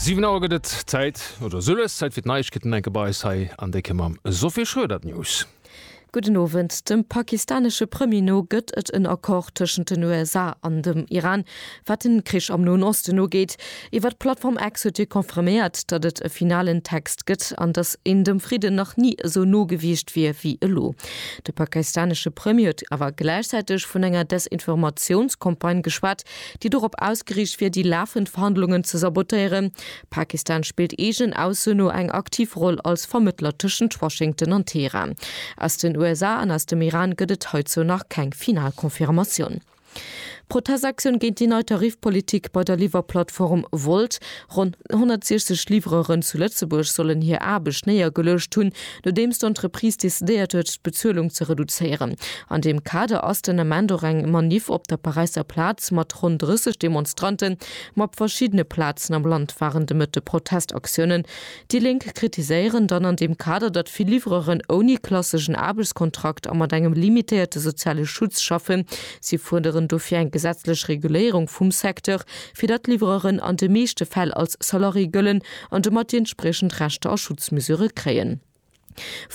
Siwen Auer gëtt et Zäit, oder soll es Zäit fir d'Neiegkeeten enke bei eis hei an Décke mam Sophie Schroeder. D'News. Gudden Owend. Dem pakistanesche Premier no gëtt et en Accord tëschent den USA an dem Iran, wat de Krich am Noen Osten ugeet. Iwwer d'Plattform X huet hie confirméiert, datt et e finalen Text gëtt an datt een dem Fridden nach ni esou no gewiescht wier wéi elo. De pakistanesche Premier huet awer gläichzäiteg vun enger Desinformatiounscampagne geschwat, déi dorop ausgeriicht wier, déi lafend Verhandlungen ze sabotéieren. Pakistan spillt eegenen Ausso no eng aktiv Roll als Vermëttler tëschent Washington an Teheran. Aus den USA an aus dem Iran gëtt et heizou nach keng final Confirmatioun. Protestaktioun géint déi nei Tarifpolitik bei der Liwwerplattform Wolt. Ronn 160 Livreuren zu Lëtzebuerg sollen hir Aarbecht néiergeluecht hunn, nodeems d'Entreprise decidéiert huet, d'Bezuelung ze reduzéieren. An deem Kader ass den Ament och eng Maniff op der Paräisser Plaz mat ronn 30 Demonstranten, ma op verschiddene Plazen am Land waren de Mëtte Protestaktiounen. Déi Lénk kritiséieren dann an deem Kader, datt vill Livreuren ouni klasseschen Aarbechtskontrakt a mat engem limitéierte soziale Schutz schaffen. Si fuerderen dofir eng gesetzlech Reguléierung vum Secteur. fir datt d'Livreuren an de meeschte Fäll als Salarié gëllen an domat déi entspriechend Rechter a Schutzmesurë kréien.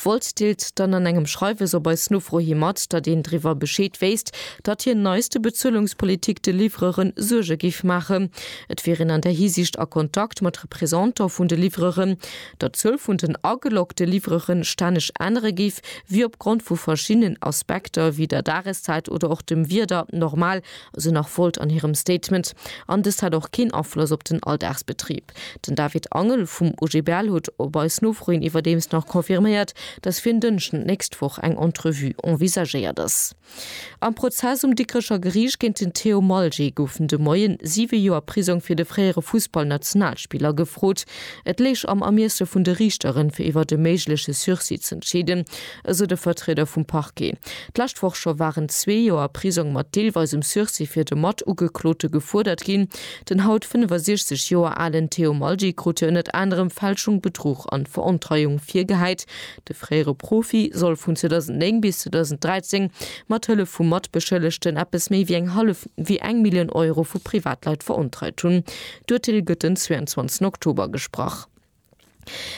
Wolt deelt dann an engem Schreiwes op eis Nofro hi mat, datt een driwwer Bescheed wéisst, datt hir neiste Bezuelungspolitik de Livreure Suerge géif maachen. Et wier een an där Hisiicht a Kontakt mat Representant vun de Livreuren, datt d'Zuel vun den ageloggte Livreure stänneg ännere géif, wéi opgrond vu verschiddenen Aspekter, wéi der Dageszäit oder och dem Wieder, normal, esou nach Volt an hirem Statement, an dëst hätt och keen Afloss op den Alldagsbetrib. Den David Angel vum OGBL huet op eis Nofro hin iwwerdeems nach confirméiert, datt fir en Dënschden d'nächst Woch eng Entrevue envisagéiert ass. Am Prozess um Dikrecher Geriicht géint den Theo Malger goufen de Moien siwe Joer Prisong fir de fréiere Fussballnationalspiller gefrot. Et léich am Ermiesse vun de Riichteren, fir iwwert e méigleche Sursis z'entscheeden, esou de Vertrieder vum Parquet. D'lescht Woch scho waren zwee Joer Prisong mat deelweisem Sursis fir de Matugeklote gefuerdert ginn. Den haut 65 Joer alen Theo Malgi krut hien ënner anerem Fälschung, Bedruch an Verontreiung virgehäit. De fréiere Profi soll vun 2009 bis 2013 mat Hëllef vu Matbeschëllegten eppes méi wéi eng hallef wéi eng Millioun Euro vu Privatleit verontreit hunn. D'Urteel gëtt den 22 Oktober gesprach.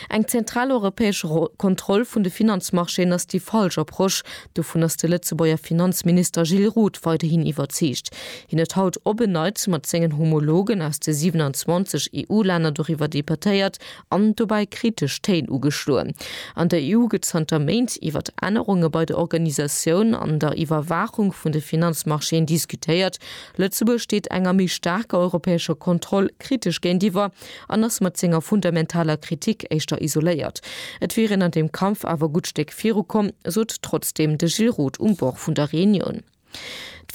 Eng zentral europäesch Kontroll vun de Finanzmarchéen ass déi falsch Approche. Dovun ass de Lëtzebuerger Finanzminister Gilles Roth weiderhin iwwerzeegt. Hien huet haut op en Neits mat sengen Homologen aus de 27 EU-Länner doriwwer debattéiert an dobäi kritesch Téin ugeschloen. An der EU gëtt zanter Méint iwwer Ännerunge bei der Organisatioun an der Iwwerwaachung vun de Finanzmarchéen diskutéiert. Lëtzebuerg steet enger méi staarker europäescher Kontroll kritesch géintiwwer. an ass mat senger fundamentaler Kritik éischter isoléiert. Et wier een an deem Kampf awer e gutt Stéck virukomm, sot trotzdeem de Gilles Roth um Bord vun der Reunioun.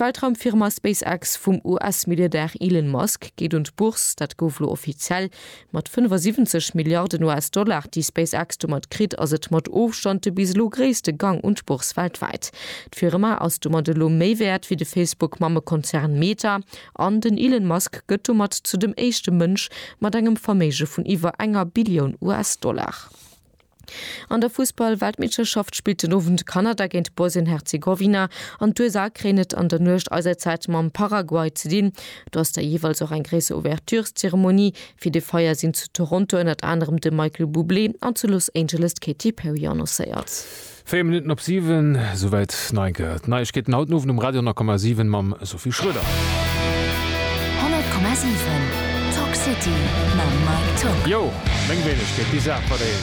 D'Weltraumfirma SpaceX vum US-Milliardär Elon Musk geet un d'Bourse, dat gouf elo offiziell. Mat 75 Milliarden US-Dollar, déi SpaceX domat kritt, ass et mat Ofstand de bis elo gréisste Gang un d'Bourse weltwäit. D'Firma ass domat elo méi wäert wéi de Facebook-Mammekonzern Meta. An den Elon Musk gëtt domat zu dem éischte Mënsch mat engem Verméige vun iwwer enger Billioun US-Dollar. An der Fussball-Weltmeeschterschaft spillt den Owend Kanada géint Bosnien-Herzegowina an d'USA kréien et an der Nuecht eiser Zäit mam Paraguay ze dinn. Do ass da jeeweils och eng gréisser Ouvertureszeremonie. Fir de Feier sinn zu Toronto ënnert anerem de Michael Bublé an zu Los Angeles d'Katy Perry annoncéiert. 4 Minutten op 7, souwäit d'Neige Neiegkeeten haut den Owend um Radio 10,7 mam Sophie Schroeder. 100,7 Talk City mam Mike Tock. Jo, meng Wéinegkeet, déi Saach mat eis.